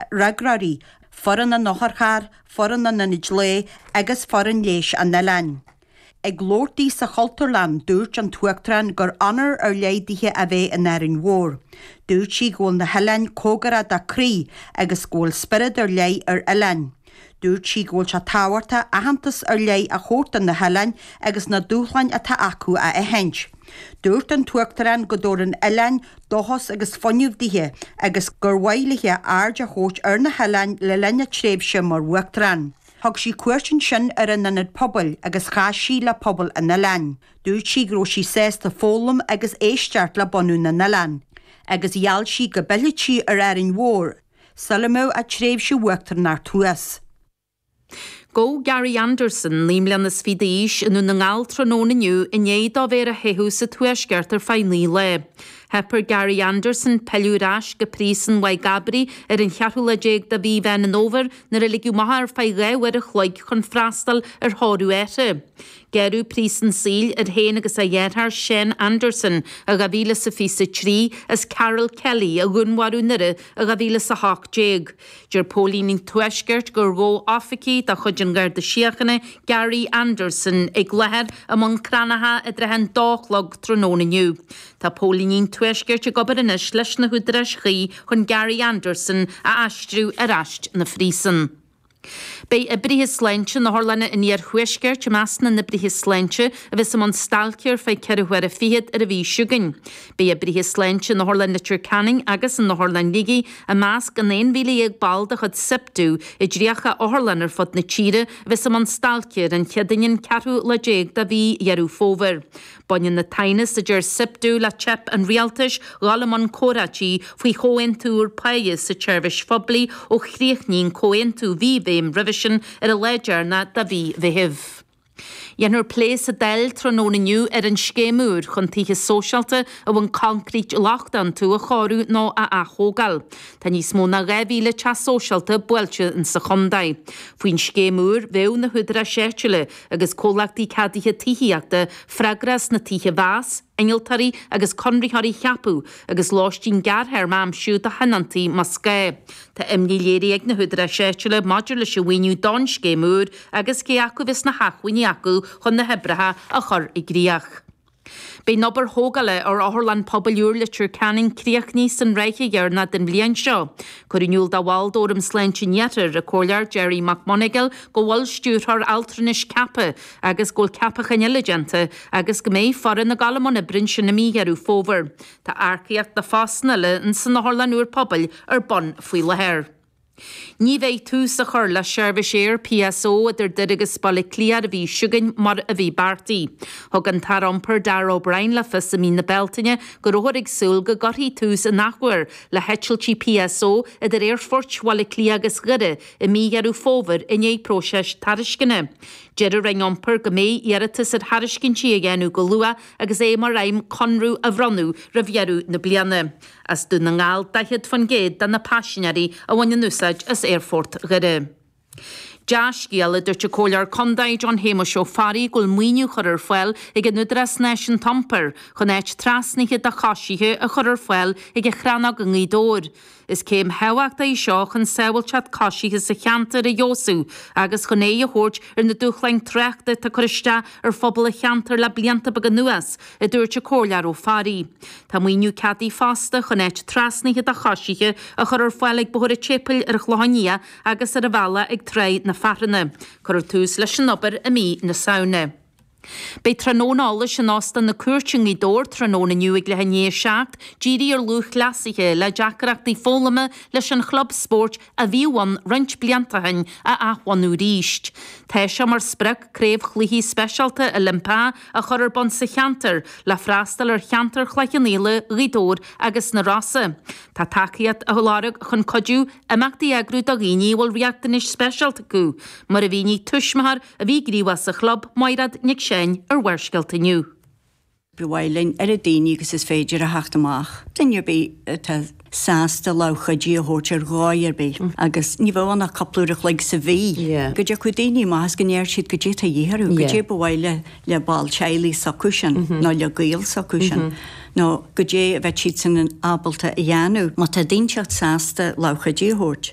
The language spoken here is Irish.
Freagróirí, Foireann an Otharchairr, Foireann an Ionaid Lae agus Foireann Leighis an Oileáin. Ag labhairt di sa Chultúrlann, dúirt an tUachtarán gur onóir ar leith dithe a bheith in Árainn Mhór. Dúirt sí go bhfuil na hoileáin cóngarach dá croí agus go bhfuil spiorad ar leith ar oileáin. Dúirt sí go bhfuil sé tábhachtach aitheantas ar leith a thabhairt do na hoileáin agus na dúshláin atá acu a aithint. Dúirt an tUachtarán go dtabharann oileáin dóchas agus fuinneamh dithe agus gur mhaith léithe aird a thabhairt ar na hoileáin le linn a tréimhse mar Uachtarán. Thug sí cuairt ansin ar an Ionad Pobail agus chas sí le pobal an oileáin. Dúirt sí go raibh sí sásta foghlaim agus éisteacht le bunadh na n-oileán agus gheall sí go bpillfeadh sí ar Árainn Mhór sula mbeidh a tréimhse Uachtaránachta thuas. Gabhadh Gary Anderson, naoi mbliana is fiche d'aois, i nDún na nGall tráthnóna inniu i ndiaidh dó bheith ar a theitheadh sa Tuaisceart ar feadh naoi lae. Theip ar Gary Anderson pilleadh ar ais go Príosún Mhaigh gCabraí ar an cheathrú lá déag de mhí Mheán an Fhómhair nuair a ligeadh amach é ar feadh dhá uair a chloig chun freastal ar thórramh áithrid. Gearradh príosún saoil air féin agus a dheartháir Sean Anderson i 2023 as Karol Kelly a dhúnmharú i nDoire i 2018. Deir Póilíní an Tuaiscirt gur ghabh oifigigh de chuid an Gharda Síochána Gary Anderson i gCloichear i mBun Cranncha i dtrátha an dó a chlog tráthnóna inniu. Tá Póilíní an Tuaiscirt ag obair anois leis na húdaráis chuí chun Gary Anderson a aistriú ar ais 'na phríosúin. Beidh oibrithe sláinte in otharlanna an Iarthuaiscirt i measc na n-oibrithe sláinte a bheas i mbun stailce ar feadh ceithre huaire fichead ar an mhí seo chugainn. Beidh oibrithe sláinte in Otharlann Leitir Ceanainn agus in Otharlann Shligigh i measc an 11,000 ball de chuid Siptu i dtríocha otharlann ar fud na tíre a bheas i mbun stailce ar an Chéadaoin an ceathrú lá déag de mhí Dheireadh Fómhair. Baineann an t-aighneas a deir Siptu le teip an rialtais dhul i mbun comhráití faoi chomhaontú úr páighe sa tseirbhís phoiblí ó chríochnaigh an comhaontú mí Mheithimh roimhe sin ar an lá deireanach de mhí Mheithimh. Déanfar plé sa Dáil tráthnóna inniu ar an scéim úr chun tithe sóisialta a bhfuil coincréit lochtach iontu a chóiriú nó a athógáil. Tá níos mó ná 2,000 teach sóisialta buailte sa chontae. Faoin scéim úr bheadh na húdaráis áitiúla agus comhlachtaí ceadaithe tithíochta freagrach as na tithe a mheas, innealtóirí agus conraitheoirí a cheapadh agus lóistín gearrthéarma a aimsiú do thionóntaí más gá. Tá imní léirithe ag na húdaráis áitiúla maidir leis an mhaoiniú don scéim úr agus cé acu a bheas na hacmhainní acu chun na hoibreacha a chur i gcrích. Beidh an obair thógála ar Otharlann Pobail úr Leitir Ceanainn críochnaithe san ráithe dheireanach den bhliain seo. Cuireadh in iúl do bhall d'Fhóram Sláinte an Iarthair, an Comhairleoir Gerry McMonagle go bhfuil stiúrthóir altranais ceaptha agus go bhfuil ceapacháin eile déanta agus go mbeidh foireann ag dul i mbun oibre ansin i mí Dheireadh Fómhair. Tá earcaíocht do phostanna eile san Otharlann úr Pobail ar bun faoi láthair. Ní bheidh tús á chur le seirbhís aeir PSO idir Doire agus Baile Átha Cliath ar an mhí seo chugainn mar a bhí beartaithe. Thug an tAire Iompair Darragh O'Brien le fios i mí na Bealtaine go rabhthar ag súil go gcuirfí tús in athuair le heitiltí PSO idir Aerfoirt Bhaile Átha Cliath agus Dhoire i mí Dheireadh Fómhair i ndiaidh próiseas tairisceana. Deir an Roinn Iompair go mbeidh iarratas ar thairiscintí á dhéanamh go luath agus é mar aidhm conradh a bhronnadh roimh dheireadh na bliana. As Dún na nGall 40% de na paisinéirí a bhaineann úsáid as Aerfort Dhoire. Dea-scéala, dúirt an Comhairleoir Condae John Shéamuis Ó Fearraigh go bhfuil maoiniú curtha ar fáil ag an Údarás Náisiúnta Iompair chun áit trasnaithe do choisithe a chur ar fáil ag an Chrannóg i nGaoth Dobhair. Is céim thábhachtach í seo chun sábháilteacht coisithe sa cheantar a fheabhsú agus chun aghaidh a thabhairt ar na dúshláin tráchta atá ag cur isteach ar phobal an cheantair le blianta beaga anuas, a dúirt an Comhairleoir Ó Fearraigh. Tá maoiniú ceadaithe fosta chun áit trasnaithe do choisithe a chur ar fáil ag Bóthar an tSéipéil ar an Chlochán Liath agus ar an bhealach ag Trá na Fearthainne. Cuirfear tús leis an obair i mí na Samhna. Beidh tráthnóna eolais in Óstán na Cúirte i nGaoth Dobhair tráthnóna inniu ag leath i ndiaidh a seacht dírithe ar lúthchleasaithe le deacaireachtaí foghlama leis an chlub spóirt a bhíodh ann roinnt blianta ó shin a athbhunú arís. Tá sé mar sprioc craobh chluichí speisialta Oilimpeacha a chur ar bun sa cheantar le freastal ar cheantar Chloich Cheann Fhaola, Ghaoth Dobhair agus na Rosa. Tá tacaíocht á lorg chun cuidiú imeachtaí a eagrú do dhaoine a bhfuil riachtanais speisialta acu, mar a mhínigh tuismitheoir a bhí gníomhach sa chlub, Maighréad Nic Seáin, ar Bharrscéalta inniu. Ba mhaith linn oiread daoine agus is féidir a theacht amach. Duine ar bith atá sásta lámh chuidithe a thabhairt ar dhóigh ar bith, agus ní bheadh ann ach cúpla uair an chloig sa mhí, go dtiocfadh daoine amach is go ndeir siad cad é atá a dhíth orthu, cad é ba mhaith le ball teaghlaigh s'acu sin nó le gaol s'acu sin, nó cad é a bheadh siadsan ábalta a dhéanamh. Má tá daoine sásta lámh chuidithe a thabhairt,